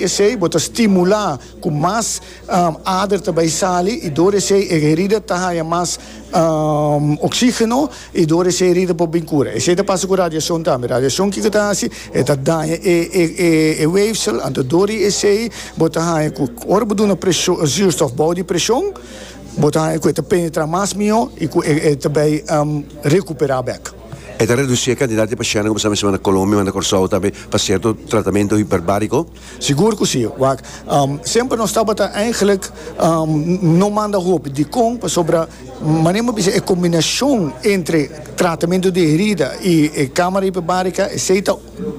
P'esei bo ta stimulá ku mas ader ta bai sali i dor esei e herida ta haña mas oksígeno i dor esei e herida por bin kura. Esei ta pasa ku radiashon tambe. Radiashon kiko ta hasi? E ta daña e wéfsel, anto dor di esei bo ta haña ku ora bo duna zuurstof bou di preshon, bo ta haña ku e ta penetrá mas mihó i ku e ta bai rekuperá bèk. E ta reducí e kantidat di pashentenan ku pasá mesón na Colombia, manda Kòrsou tambe pa sierto tratamentu hiperbáriko. Sigur ku sí, wak. Semper nos tabata èigelik no manda hopi. Dikon? Pasobra manera mi bisa e kombinashon entre tratamentu di herida i e kámara hiperbárika esei ta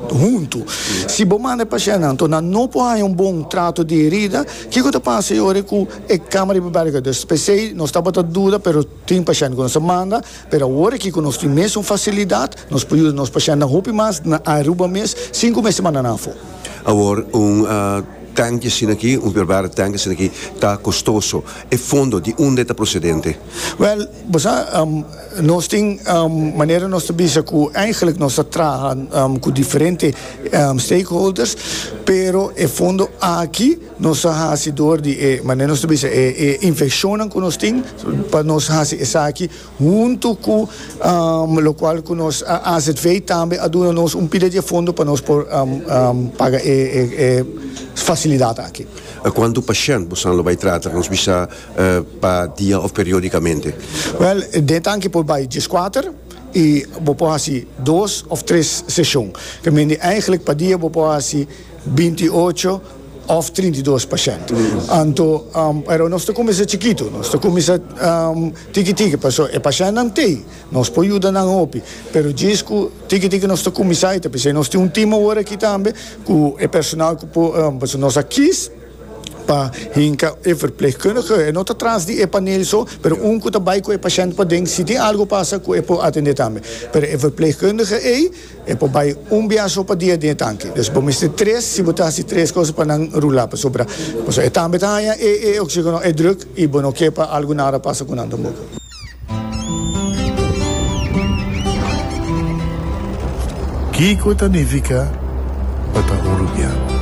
huntu. Si bo manda e pashentenan torná no por haña un bon trato di herida, kiko ta pasa yori ku e kámara hiperbárika? P'esei nos tabata duda, pero. Tin pashènt ku nos ta manda, pero awor aki ku nos tin mes un fasilidat, nos por yuda nos pashèntnan hopi mas na Aruba mes sin ku mester manda nan afó. Awor un tanki asina aki, un perbarde tanki asina aki ta kostoso. E fondo di unda e ta prosedente? Wèl, bo sa, nos tin manera nos ta bisa ku eigentlik nos ta traha ku diferente stakeholders, pero e fondo aki, Nos a hasi dor di e, manera nos ta bisa, e infeccionnan cu nos tin, pa nos hasi esaki huntu cu locual cu nos AZV tambe a duna nos un pila di e fondo pa nos por paga e facilidad aki. Cuantu pashent bosan lo bay trata? Nos bisa pa dia of periodicamente? Wel, den tanki por bay diescuater y bo por hasi dos of tres sesion. Ta mindi, eigenlijk pa dia bo por hasi binti ocho. Òf trinta i dos pa shent. Anto, pero nos ta kuminsá chikitu. Nos ta kuminsá tiki tiki pasobra e pashentnan t'ei, nos por yuda nan hopi. Pero djis ku tiki tiki nos ta kuminsá i ta p'esei nos tin un tim awor aki tambe ku e personal ku por pasobra nos a kis pa hinka e verplegkundige. E no ta tras di e panel so, pero un ku ta bai ku e pashent paden si tin algu pasa ku e por atendé tambe. Pero e verplegkundige ei. E por bai un biaha so pa dia den e tanki. Dus bo mester tres, si bo ta hasi tres cosa pa nan rula, pasobra pasobra e tambe ta haña e e oxigeno e druk i bo no ke pa algu nara pasa ku nan tampoco. Kiko ta nifica pa ta hurupiá?